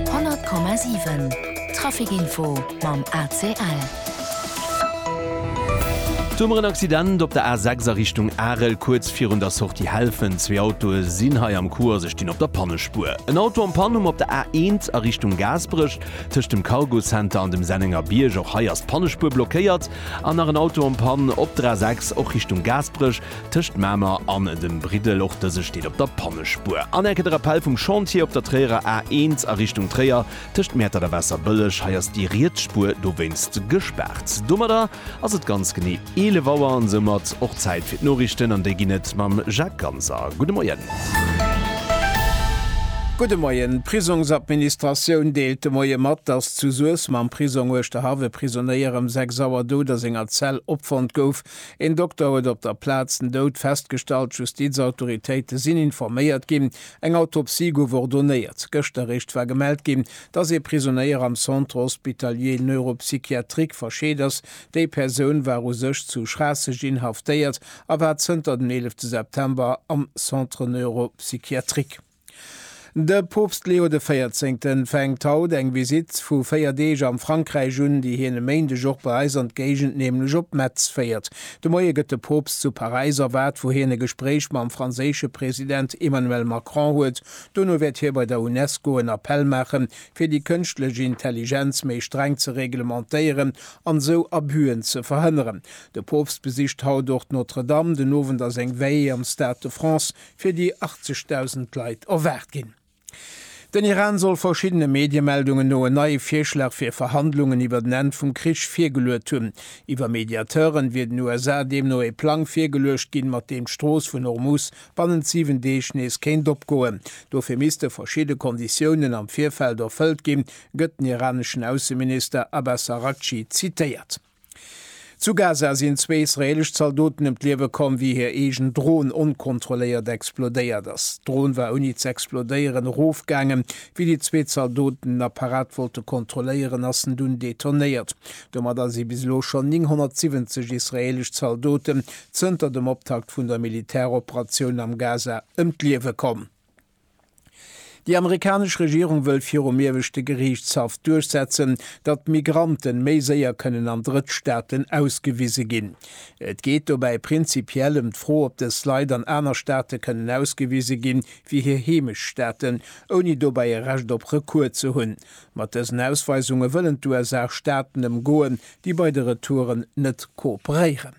100,7 Trafic Info mam ACL. Domat en Accident op der A6 a Richtung Arel. Kuerz virun der Sortie Helfent, zwee Autoe sinn hei am Coup a se stinn op der Pannespuer. En Auto am Panne um op der A1 a Richtung Gaasperech, tëscht dem Cargo Center an dem Sennenger Bierg. Och hei ass d'Pannespuer blockéiert. An nach en Auto am Pann op der A6, och Richtung Gaasperech, Tëscht Mamer an dem Briddel, och dëse steet op der Pannespuer. An Eck de Rappel vum Chantier op der Tréierer A1 a Richtung Tréier, tëscht Mäertert a Waasserbëlleg. Hei ass déi riets Spuer dowéinst gespaart. Domadder ass et ganz genee 11 Auer an soumat och Zäit fir d'Noriichten an déi ginn et mam Jacques Ganser. Gudde Moien. Gudde Moien. D'Prisongsadministratioun deelt de Moie mat, datt zu Suessem am Prisong Uerschterhaff e Prisonéier ëm 6 Auer dout a senger Zell opfonnt gouf. Een Dokter huet op der Plaz den Doud festgestallt. D'Justizautoritéite sinn informéiert ginn. Eng Autopsie gouf ordonéiert. Gëschter eréischt war gemellt ginn, dass ee Prisonéier am Centre hospitalier neuropsychiatrique verscheet ass. Déi Persoun war u sech zu Schraasseg inhaftéiert a war zënter den 11 September am Centre neuropsychiatrique. De Poopst Leo de Véierzéngten fänkt haut eng Visitt vu 4 Deeg am Frankräich un, déi hien e Méindeg och bei eis an d'Géigend, nämlech op Metz féiert. De Moie gëtt de Poopst zu Paräis erwaart, wou hien e Gespréich mam franséische President Emmanuel Macron huet. Dono wäert hie bei der Unesco en Appell maachen, fir déi kënschtlech Intelligenz méi streng ze reglementéieren an esou Abüen ze verhënneren. De Poopst besicht haut och d'Notre-Dame. Den Owend ass eng Veillée am Stade de France. fir déi 80.000 Leit erwaart ginn. Den Iran soll verschiddene Mediemeldungen no en neie Virschlag fir Verhandlungen iwwer den Enn vum Krich virgeluet hunn. Iwwer Mediateuren wier den USA deemno ee Plang virgeluecht ginn, mat deem d'Strooss vun Hormuz bannent 7 Deeg nees kéint opgoen. Dofir misste verschidde Konditiounen am Virfeld erfëllt ginn, gëtt den iraneschen Ausseminister Abbas Araghchi zitéiert. Zu Gaza sinn zwee israeelesch Zaldoten ëm d'Liewe komm, wéi hir eegen Dron onkontrolléiert explodéiert ass. D'Dron war ouni ze explodéieren erofgaangen. Wéi déi zwee Zaldoten den Apparat wollte kontrolléieren, ass en dunn detonéiert. Domadder si bis elo schonn 970 israeelesch Zaldoten zënter dem Optakt vun der Militäroperatioun am Gaza ëm d'Liewe komm. Déi amerikanesch Regierung wëll virum Ieweschte Geriichtshaff duerchsetzen, datt Migrante méi séier kënnen an Drëttstaaten ausgewise ginn. Et geet dobäi prinzipiell ëm d'Fro, ob dës Leit an aner Staate kënnen ausgewise gi wéi hir Heemechtsstaaten, ouni dobäi e Recht op Recours ze hunn. Mat dësen Ausweisunge wëllen d'USA Staaten ëmgoen, déi bei de Retouren net kooperéieren.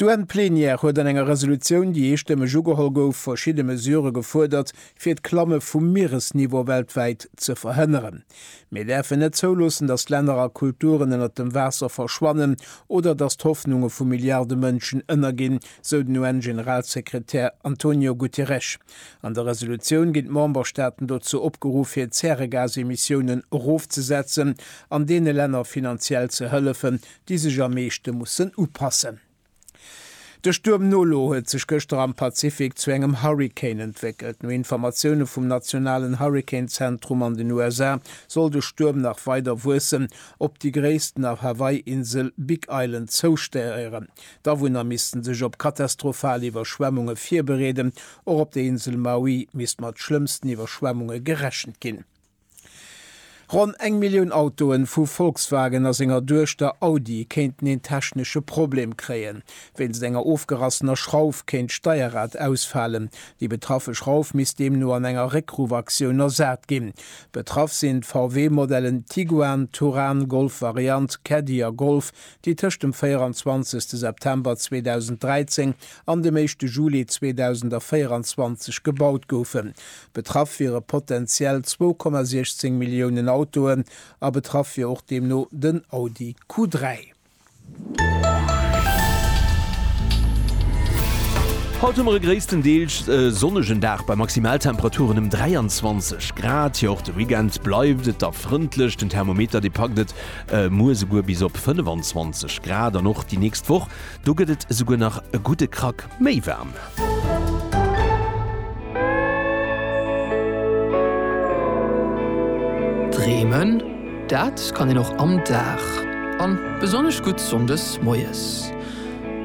D'UN-Plenière huet an enger Resolutioun, déi eestëmmeg ugeholl gouf, verschidde Mesurë gefuerdert, fir d'Klamme vum Mieresniveau weltwäit ze verhënneren. Mir däerfen net zouloossen, datt Länner a Kulturen ënnert dem Waasser verschwannen oder datt d'Hoffnunge vu Milliarde Mënschen ënnerginn, sou den UN-Generalsekretär Antonio Guterres. An der Resolutioun ginn d'Memberstaaten dozou opgeruff, hir Zäregasemissiounen erofzesetzen an deene Länner finanziell ze hëllefen, déi sech am meeschte mussen upassen. De Stuerm Nolo huet sech gëschter am Pazifik zu engem Hurrikan entwéckelt. No Informatioune vum nationalen Hurrikanzentrum an den USA soll de Stuerm nach weider wuessen, op déi gréisst nach Hawaii-Insel Big Island zoustéieren. D'Awunner misste sech op katastrophal Iwwerschwemmunge virbereeden. Och op der Insel Maui misst mat schlëmmsten Iwwerschwemmunge gerechent ginn. Ronn eng Millioun Autoen vu Volkswagen a senger Duechter Audi kéinten een technesche Problem kréien. Wéinst enger ofgerassener Schrauf kéint d'Steierrad ausfalen. Déi betraffe Schrauf misst deemno an enger Réckruff-Aktioun ersat ginn. Betraff sinn d'VW-Modellen Tiguan, Touran, Golf Variant, Caddy a Golf, déi tëscht dem 24 September 2013 an dem éischte Juli 2024 gebaut goufen. Betraff wiere potenziell 2,16 Milliounen Autoen a betraff wier och deemno den Audi Q3. Haut hu mer e gréisstendeels sonnegen Dag bei Maximaltemperaturen ëm 23 Grad. Jo och de Weekend bleift et da frëndlech, den Thermometer dee packt et muer esouguer bis op 25 Grad an och déi nächst Woch Do gëtt et esouguer nach e gudde Krack méi waarm. Dreemen, dat kann een och am Dag, an besonnesch gutt Sonndes moies.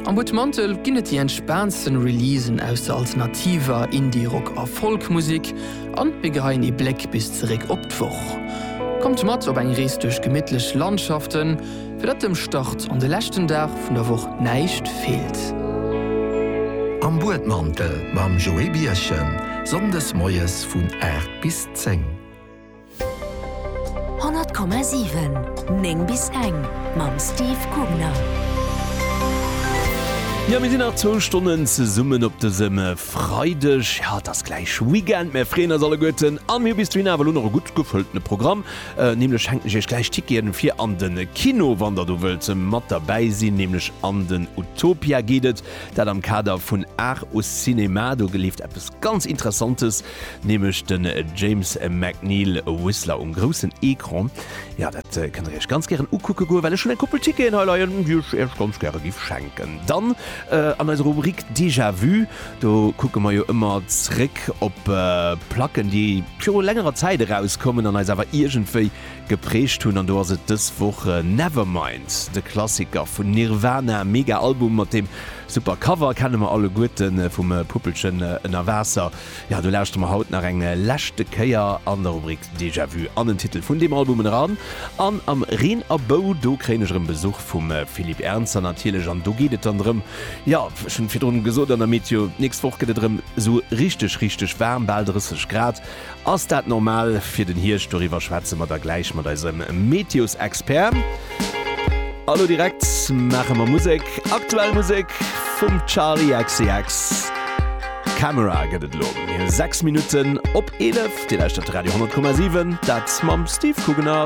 Am Butmantel ginn et déi entspaantsten Releasen aus der alternativer, Indie-Rock a Folk-Musik, an mir geheien ee Bléck bis zeréck op d'Woch. Kommt mat op eng Rees duerch gemittlech Landschaften. Fir datt dem Start an de leschten Dag vun der Woch näischt feelt. Am Buedmantel mam Joé Bierchen, Sonndes moies vun 8 bis 10. 100,7, 9 bis eng mam Steve Kugner. Jo, mir sinn nach zwou Stonnen zesummen op dësem Freideg. Jo, et ass gläich Weekend. Mir freeën eis alleguerten a mir hu bis dohin awer elo nach e gutt gefëlltene Programm. Nämlech schenken ech iech gläich Ticketen fir an den Kino, wann der do wëllt mat derbäi sinn. Nämlech an den Utopia geet et, dat am Kader vun Art au Cinéma. Do geleeft eppes ganz Interessantes, nämlech den James McNeil Whistler um groussen Ecran. Jo, dat kënnt der iech ganz gären ukucken goen, well ech hunn eng Koppel Ticketen hei leien, déi ech iech ganz gäre giff schenken. Dann an eiser Rubrik Déjà-vu, Do kucke mer jo ëmmer zréck op Placken, déi viru längerer Zäit erauskommen an eis awer iergendwéi geprägt hunn. An do ass et dës Woch Nevermind, de Klassiker vun Nirvana. Mega Album mat deem super Cover, kenne mer alleguerten, vum Puppelchen ënner Waasser. Jo, do lauschtere mer haut nach eng leschte Kéier an der Rubrik Déjà Vu an den Titel vun deem Album eran. An am Reen a Bou, do kréien ech erëm Besuch vum Philippe Ernzer natierlech an do geet et dann drëm, Jo, ech hunn virdrun gesot an der Météo, d'nächst Woch gëtt et erëm esou richteg, richteg waarm, bal 30 Grad. Ass dat normal fir den Hierscht? Doriwwer schwätze mer da gläich mat eisem Météosexpert. A lo direkt maache mer Musek, aktuell Musek vum Charli XCX. Camera gëtt et elo 6 Minutten op 11. Dir lauschtert Radio 10,7, dat mam Steve Kugener.